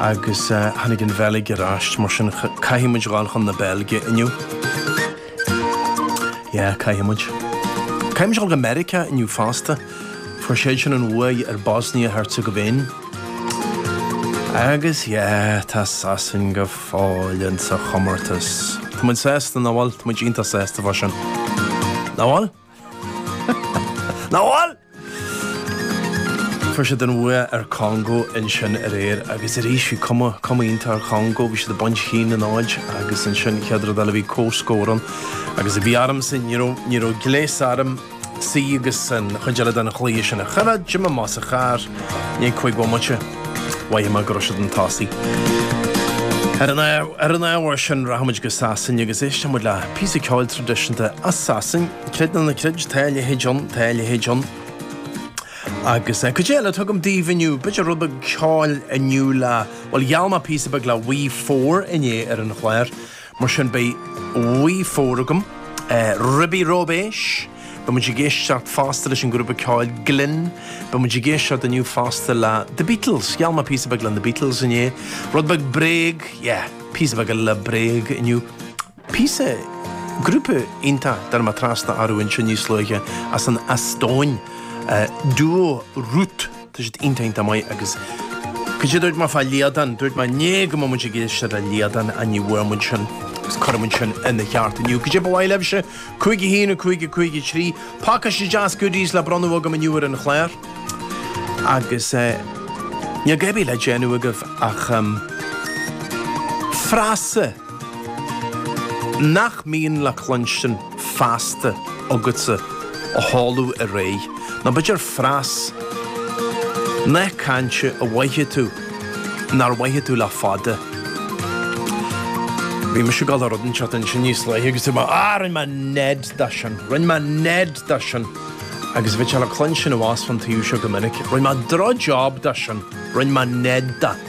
agus tháinig an Bheilg ar ais, mar sin caithfidh muid dhul chun na Beilge inniu. Yeah, caithfidh muid. Caithfidh muid dhul go Meiriceá inniu fosta, fuair siad sin an bhuaidh ar Bosnia-Herzegovin. Agus yeah, tá Sasain go fóill ins an chomórtas. Tá muid sásta, nach bhfuil? Tá muid iontach sásta fá sin. Nach bhfuil? Nach bhfuil! Fuair siad an bhuaidh ar Congo ansin aréir agus arís bhí cuma, cuma iontach ar Chongo, bhí siad ag baint cionn a náid agus ansin chéad rud eile bhí comhscór ann agus a bhí ormsa ní raibh, ní raibh gléas orm suí agus an chuid eile den chluiche sin a choimhéad, d'imigh mé sa charr i ndiaidh cúig bhomaite. Mhothaigh mé go raibh siad chun tosaigh. Ar an ábhar sin rachaimid go Sasain agus éistfimid le píosa ceoil traidisiúnta as Sasain, creid nó ná creid, Tá a leithéid ann, Tá a leithéid ann. Agus cad é eile atá agam daoibh inniu, b'fhéidir rud beag ceoil inniu le, bhuel gheall mé píosa beag le Wee Four inné ar an chlár. Mar sin beidh Wee Four agam, ribí róibéis, beidh muid ag éisteacht fosta leis an grúpa ceoil Glinn, beidh muid ag éisteacht inniu fosta le The Beatles, gheall mé píosa beag le na Beatles inné, rud beag Bréag, yeah, píosa beag eile le Bréag inniu, píosa, grúpa iontach a dtáinig mé trasna orthu anseo níos luaithe as an Eastóin, Duo Ruut. Tá siad iontach iontach maith agus cad é a dúirt mé fá Liadán, dúirt mé inné go mbeadh muid ag éisteacht le Liadán ach ní bhfuair muid sin agus cuirfidh muid sin ina cheart inniu. Cad é ba mhaith libhse, cúig a haon, cúig a cúig a trí, pacáiste deas goodies le bronnadh agam inniu ar an chlár agus níl a dhath ar bith le déanamh agaibh ach frása. Nach mbíonn le cluinstin feasta agatsa a sholáthar, nó b'fhéidir frása, nath cainte a mhothaigh tú nár mhothaigh tú le fada. Bhí mise ag dul ar rud an tseachtain sin níos luaithe agus dúirt mé, á, rinn mé ned de sin, rinn mé ned de sin, agus bhí sé le cluinstin abhus fán taobh seo go minic, rinn mé drochjab de sin, rinn mé ned de.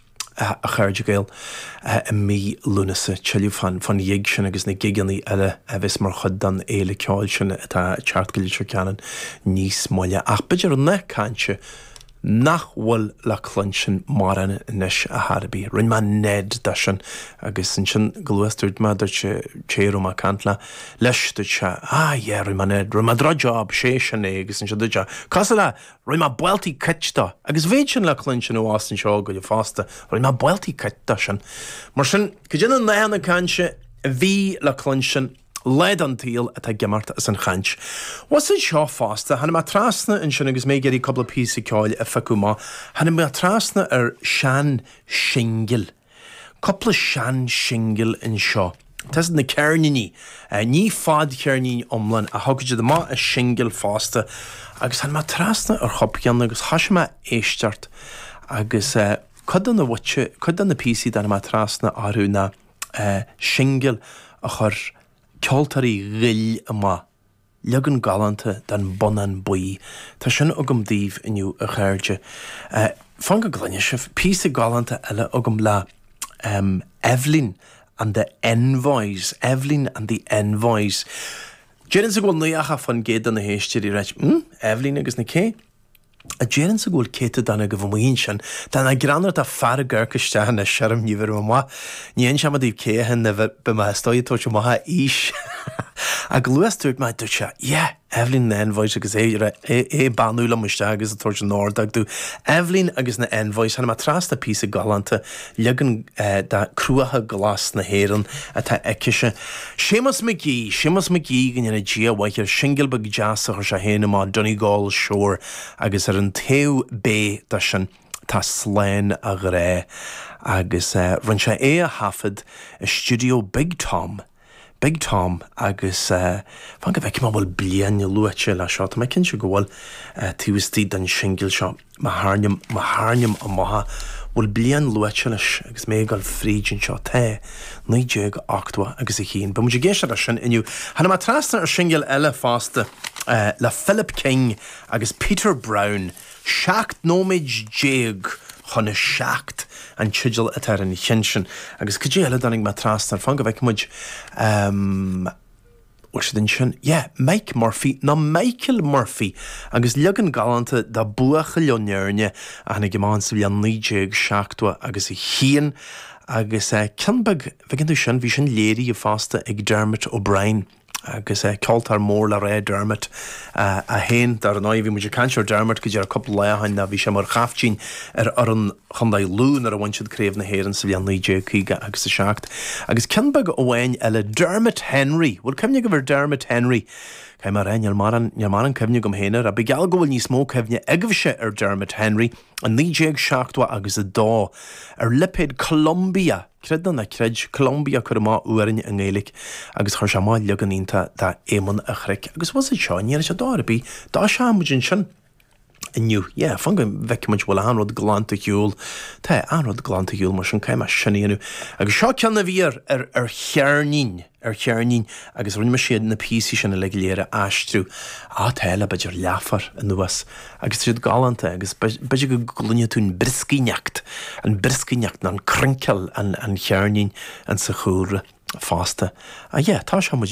a chairde Gael, i mí Lúnasa. Tuilleadh fán ghig sin agus na gigeanna eile a bheas mar chuid den fhéile ceoil sin atá ag teacht go Leitir Ceanainn níos moille. Ach b'fhéidir an nath cainte nach bhfuil le cluinstin mórán anois ar chor ar bith. Rinne mé Ned de sin agus ansin chomh luath is a dúirt mé, dúirt an té a raibh mé ag caint le, leis, dúirt sé, Ah yeah, rinne mé Ned, rinne mé drochjab, sé sin é, agus ansin dúirt sé, Cosúil le, Rinne mé buelty kick do, agus bheadh sin le cluinstin abhus anseo go leor fosta, rinne mé buelty kick do, sin. Mar sin, cuid de na nathanna cainte a bhí le cluinstin lá den tsaol atá ag imeacht as an chaint. Abhus anseo fosta, tháinig mé trasna ansin agus mé ag iarraidh cúpla píosa ceoil a phiocadh amach, tháinig mé trasna ar shean-shingil, Cúpla sean singil anseo. Tá a fhios agat na ceirníní. Ní fadcheirnín iomlán a thugadh siad amach ach singil fosta. Agus tháinig mé trasna ar chúpla ceann agus thoisigh mé ag éisteacht agus cuid de na mhuice, cuid de na píosaí a tháinig mé trasna orthu ná singil a chuir ceoltóirí Ghoill amach. Leagan galánta den bonnán buí. Tá sin agam daoibh inniu a chairde. Fan go gcluine sibh, píosa galánta eile agam le Eibhlín and the Envoys. Eibhlín and the Envoys. Déarfainnse go bhfuil 90% de na héisteoirí ag ráit. Eibhlín agus na cé? a déarfainnse go bhfuil céatadán agaibh amuigh ansin, tá nach greannmhar, tá fear ag amharc isteach anois orm, ní bheirim amach, ní inseoidh mé daoibh cé hé nó beidh mé is dóigh ag tabhairt amach a aois ach chomh luath is dúirt mé, dúirt sé, yeah, Eibhlín na Envoys agus é, é, é ag beannú liom isteach agus ag tabhairt an ordóg domh, Eibhlín agus na Envoys, tháinig mé trasna píosa galánta, Leagan de Cruacha Glasa na hÉireann atá aici-se. Séamus McGee! Séamus McGee, go ndéana Dia a mhaith air, singil beag deas a chuir sé féin amach, Donegal Shore, agus ar an taobh B de sin tá Slán a Ghrá, agus rinne sé é a thaifead i stiúideo Big Tom i. Big Tom agus fan go bhfeicfidh mé an bhfuil bliain luaite leis seo, tá mé cinnte go bhfuil, taobh istigh den singil seo, má thairnim, má thairnim amach an bhfuil bliain luaite leis agus mé ag dul fríd anseo, tá, 1980 agus a haon. Beidh muid ag éisteacht leis sin inniu. Tháinig mé trasna ar shingil eile fosta le Philip King agus Peter Browne. 17 nóiméad chun a seacht an teideal atá ar an cheann sin agus cad é eile a dtáinig mé trasna air fan go bhfeicfidh muid bhfuil siad ansin yeah Mike Murphy nó Michael Murphy agus leagan galánta de Buachaill ón Éirne a tháinig amach sa bhliain 1970 agus a haon agus ceann beag bhí sin léirithe fosta ag Dermot O'Brien. agus ceoltóir mór le rá, Dermot é féin. Dar ndóigh, bhí muid ag caint ar Dermot go díreach cúpla lá ó shin nó bhí sé mar chaiftín ar fhoireann Chondae Lú nuair a bhain siad Craobh na hÉireann sa bhliain 1950 agus 7. Agus ceann beag amháin eile, Dermot Henry! Bhfuil cuimhne agaibh ar Dermot Henry? Cad é mar é? Níl morán, níl morán cuimhne agam féin air. Ach bíodh geall go bhfuil níos mó cuimhne agaibhse ar Dermot Henry. I 1970 agus 2 ar lipéad Columbia! Creid nó ná creid, Columbia cuireadh amach amhráin i nGaeilic agus chuir sé amach leagan iontach de Éamonn an Chnoic agus bhfuil a fhios agat, seo é anois ar dhóigh ar bith, toiseochaidh muid ansin inniu, yeah, fan go bhfeice muid bhfuil achan rud glanta ar shiúl, tá achan rud glanta ar shiúl mar sin, caithfidh mé sin a dhéanamh agus seo ceann a bhí ar, ar, ar cheirnín. ar cheirnín agus rinne mise na píosaí sin uilig go léir a aistriú. Áit eile b'fhéidir leáfar anuas agus tá siad galánta agus b'fhéidir go gcluinfidh tú an brioscaíneacht, an brioscaíneacht nó an crinkle an cheirnín insa chúlra fosta. Á yeah, toiseochaidh muid.